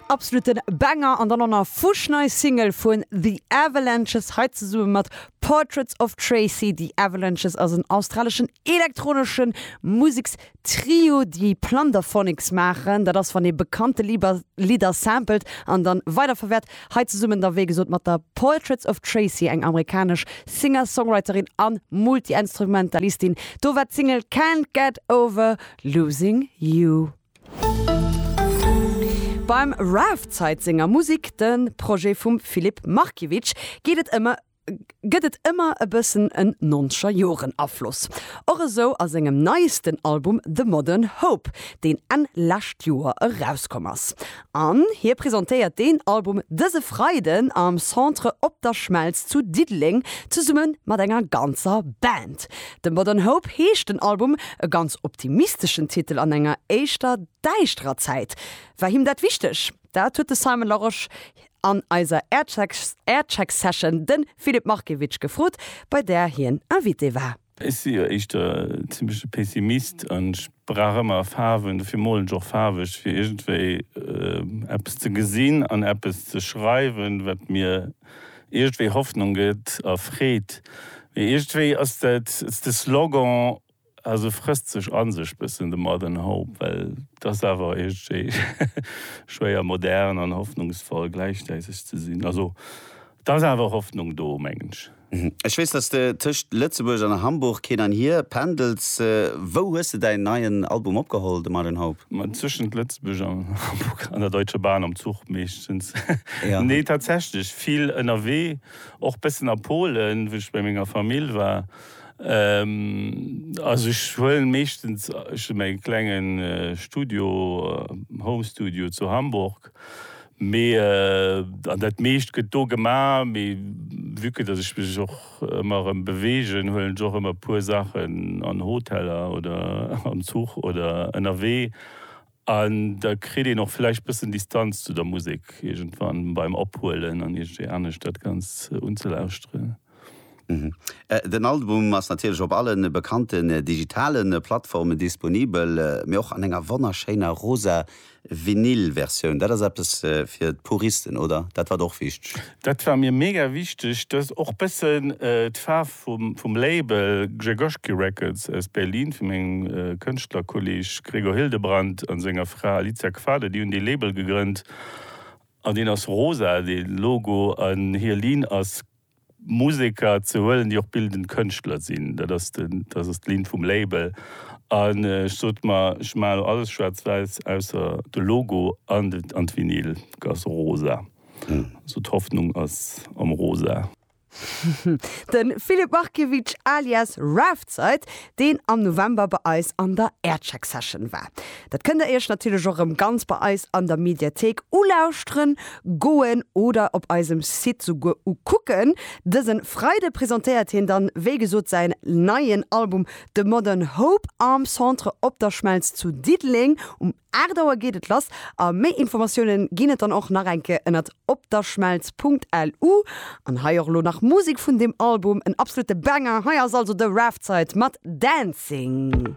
Absoluten Banger an dann och nach fuschnei Single vun The Avalanches hei zesumme mat Portraits of Tracy. The Avalanches ass en australeschen elektronesche Musekstrio, déi Plunderphonics maachen. Dat ass wann ee bekannte Lidder sampelt an dann weiderverwäert. Hei zesummen da wéi gesot mat der Portraits of Tracy, eng amerikanesch Singer-Songwriterin a Multiinstrumentalistin. Do war d'Single Can't Get Over Losing You. Beim Rave-Zeit senger Musik, de Projet vum Filip Markiewicz, geet et ëmmer gëtt et ëmmer e bëssen en Noncher-Joren-Afloss. Och esou a sengem neiesten Album The Modern Hope, deen Enn lescht Joer erauskomm ass. An hie presentéiert deen Album dëse Freiden am Centre Op der Schmelz zu Diddeleng zesumme mat enger ganzer Band. The Modern Hope heescht den Album. E ganz optimisteschen Titel an enger éischter däischterer Zäit. War him dat wichteg? Dat huet de Simon Larosche an eiser Aircheck-Session de Philipp Markiewicz gefrot, bei där hien Invité war. Ech si jo éischter en zimmleche Pessimist an ech brauch ëmmer a Faarwen, dofir molen ech och faarweg, fir iergendwéi eppes ze gesinn an eppes ze schreiwen, wat mir iergendwéi Hoffnung gëtt a Freed. Mee iergendwéi ass dat, ass de Slogan, also frësst sech a sech bëssen de Modern Hope, well et ass awer iergendwéi schwéier modern an hoffnungsvoll gläichzäiteg ze sinn. Also Et ass awer Hoffnung do, mengen ech. Ech weess, dass de tëscht Lëtzebuerg an Hamburg hin an hier pendels. Wou hues de däin neien Album opgeholl, de Martin Haup? Tëschent Lëtzebuerg an Hamburg an der Deutsche Bahn, am Zuch meeschtens. Nee, tatsächlech vill ënnerwee, och bëssen a Polen, wou ech bei menger Famill war. Also ech huelen meeschtens, ech hu mäi klengen Studio, Home Studio zu Hamburg, Mee, an dat meescht gëtt do gemaach, mee vue que datt ech mech och ëmmer erëm beweegen, huelen ech och ëmmer e puer Saachen an Hoteller oder am Zuch oder ënnerwee. An da kritt een och vläicht bëssen Distanz zu der Musek iergendwann beim Ophuelen an iergendwéi anescht dat Ganzt unzelauschteren. Den Album ass natierlech op alle bekannten digitale Plattformen disponibel, mee och an enger wonnerschéiner rosa Vinyl-Versioun. Dat ass eppes fir d'Puristen, oder? Dat war der och wichteg? Dat war mir mega wichteg, dass och bëssen d'Faarf vum Label Grzegorski Records aus Berlin, vu mengem Kënschtlerkolleg Gregor Hildebrandt a senger Fra Alicia Quade, déi hunn dee Label gegrënnt, An deen ass rosa, dee Logo. An hir Linn ass, Museker ze huelen, déi och bildend Kënschtler sinn. Dat ass den, dat ass d'Linn vum Label. An ech sot mer, ech maachen elo alles schwaarz-wäiss, ausser de Logo an de, an d'Vinyl ass rosa. Also d'Hoffnung ass am Rosa. De Filip Markiewicz alias Raftside, deen am November bei eis an der Aircheck Session war. Dat kënnt der iech natierlech och erëm ganz bei eis an der Mediathéik ulauschteren, goen oder op eisem Site souguer ukucken. Dëse Freide presentéiert hien dann, wéi gesot, säin neien Album The Modern Hope am Centre Op der Schmelz zu Diddeleng um. 8 Auer geet et lass a méi Informatiounen ginn et dann och nach eng Kéier ënnert opderschmelz.lu. An hei och elo nach Musik vun deem Album, en absolute Banger. Hei ass also The Raftside mat Dancing.